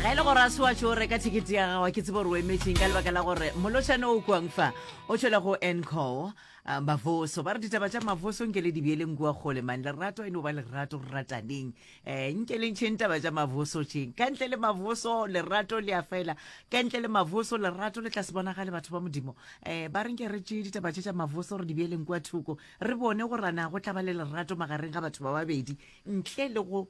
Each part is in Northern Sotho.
ga e le gore a se wa tšo reka thekete ya gago ke tsebo gore o emetseng ka lebaka la gore molotšhane o kwang fa o tšwele go ncol ah, mavoso ba re ditaba tša mavoso nke le dibeeleng kua kgole mane lerato e no ba lerato re rataneng um nke le ntšheng taba tša mavoso tšeng ka ntle le mavoso lerato le a fela ka ntle le mavoso lerato le tla se bonagale batho ba modimo um ba re nke re tšee ditaba tše tša mavoso re dibeeleng kua thoko re bone gore na go tla ba le lerato magareng ga batho ba babedi ntle le go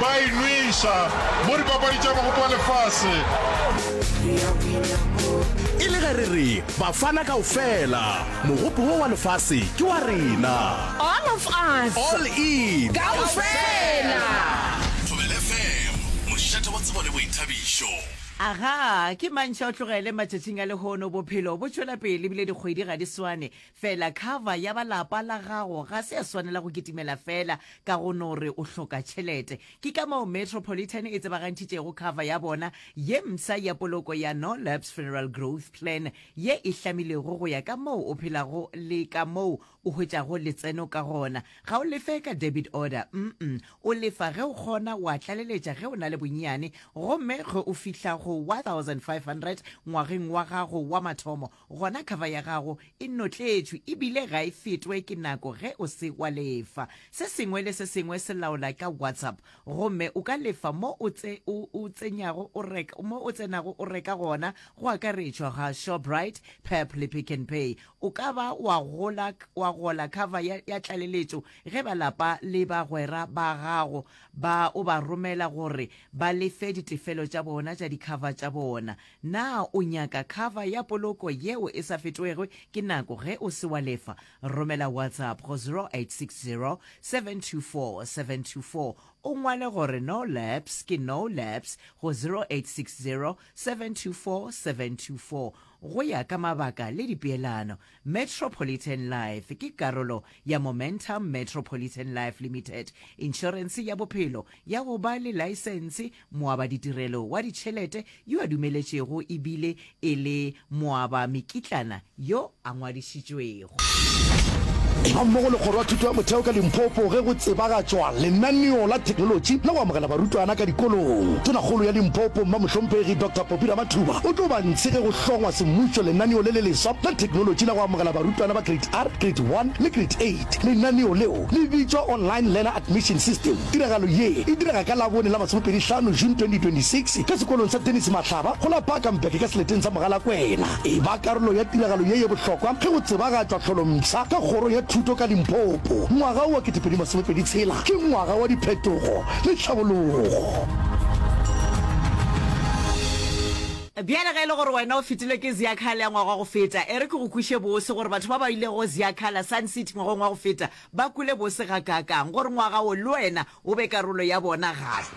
Ba e nweša mo dipapadi tša Mogopo wa Lefase. E le ge re re Bafana kaofela, Mogopo wo wa Lefase ke wa rena. All of us. All in. Kaofela. Thobela FM, mošate wa tsebo le boithabišo. Agaa, ke mantšha o tlogele matšatšing a lehono, bophelo bo tšwela pele ebile dikgwedi ga di swane. Fela cover ya ba lapa la gago ga se ya swanela go kitimela fela ka go no re o hloka tšhelete. Ke ka moo Metropolitan e tsebagantšhitšego cover ya bona ye msa ya poloko ya No Lapse Funeral Growth Plan ye e hlamilwego go ya ka moo o phelago le ka moo o hwetšago letseno ka gona. Ga o lefe ka debit order, mm, o lefa ge o kgona wa tlaleletša ge o na le bonnyane gomme ge o fihla go 1500 ngwageng wa gago wa mathomo Gona khava ya gago e notletšwe e bile ga e fetwe ke nako ge o se wa lefa. Se sengwe le se sengwe se laola ka WhatsApp gomme o ka lefa mo o tse o o tsenyago o reka mo o tsenago o reka gona go akaretšwa ga Shoprite, Pep le Pick n Pay. O ka ba wa gola wa gola khava ya ya tlaleletšo ge ba lapa le bagwera ba gago ba o ba romela gore ba lefe ditefelo tša bona tša dikhava tša bona. Na o nyaka khava ya poloko yeo e sa fetwego ke nako ge o se wa lefa? Romela WhatsApp go 0860724724 o ngwale gore No Lapse ke No Lapse go 0860724724 go ya ka mabaka le dipeelano. Metropolitan Life ke karolo ya Momentum Metropolitan Life Limited, inšorense ya bophelo ya go ba le laesense, moabaditirelo wa ditšhelete yo a dumeletšego e bile e le moabamekitlana yo a ngwadišitšwego. Eba mmogo le Kgoro ya Thuto ya Motheo ka Limpopo ge go tsebagatšwa lenaneo la theknolotši la go amogela barutwana ka dikolong. Tonakgolo ya Limpopo, Mmamohlomphegi Doctor. Biramathuba o tlo ba ntshe ge go hlongwa semmušo lenaneo le le leswa la theknolotši la go amogela barutwana ba Grade R, Grade One le Grade Eight. Lenaneo leo le bitšwa Online Learner Admission System. Tiragalo ye e direga ka Labone la masomepedi hlano, June 2026, ka sekolong sa Dennis Mahlaba go la Bakenberg ka seleteng sa Mogalakwena. E ba karolo ya tiragalo ye ye bohlokwa ge go tsebagatšwa tlholompsha ka Kgoro ya Thuto ka Limpopo. Ngwaga wo wa ketepedi masomepedi tshela ke ngwaga wa diphetogo. le tlhabologo. Bjale ge e le gore wena o fetilwe ke Ziakhala ya ngwaga wa go feta, e re ke go kweše bose gore batho ba ba ilego go Ziakhala, Sun City, ngwageng wa go feta ba kwele bose gakaakang gore ngwaga wo le wena o be karolo ya bona gape.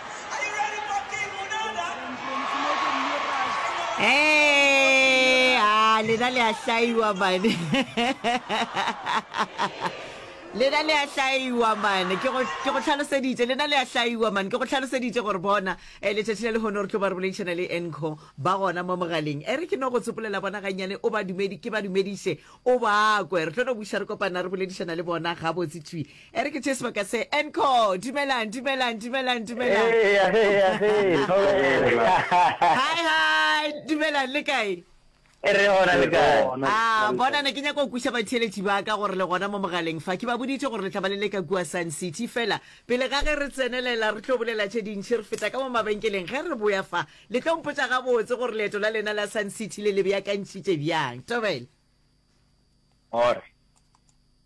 Hey, ah, lena le a hlaiwa mane lena le a hlaiwa mane ke go ke go tlhaloseditše lena le a hlaiwa mane ke go tlhaloseditše gore bona um letšatši la lehono re tlo ba re boledišana le enco ba gona mo mogaleng e re ke no go tsopolela bona gannyane o ba dumedi ke ba dumediše o ba kwe re tlo no buša re kopana re boledišana le bona gabotse twi e re ke tšee sebaka se enco dumelang dumelang dumelang dumelang Eya, eya, eya, thobela. hi hi dumelang le kae E re gona le kae? a bona ne ke nyaka go kweša batheeletši ba ka gore le gona mo mogaleng fa ke ba boditše gore le tla ba le leka kua sun city fela pele ga ge re tsenelela re tlo bolela tše dintšhi re feta ka mo mabenkeleng ge re boya fa le tlo mpotša gabotse gore leeto la lena la sun city le le beakantšhitše bjang tobela All right.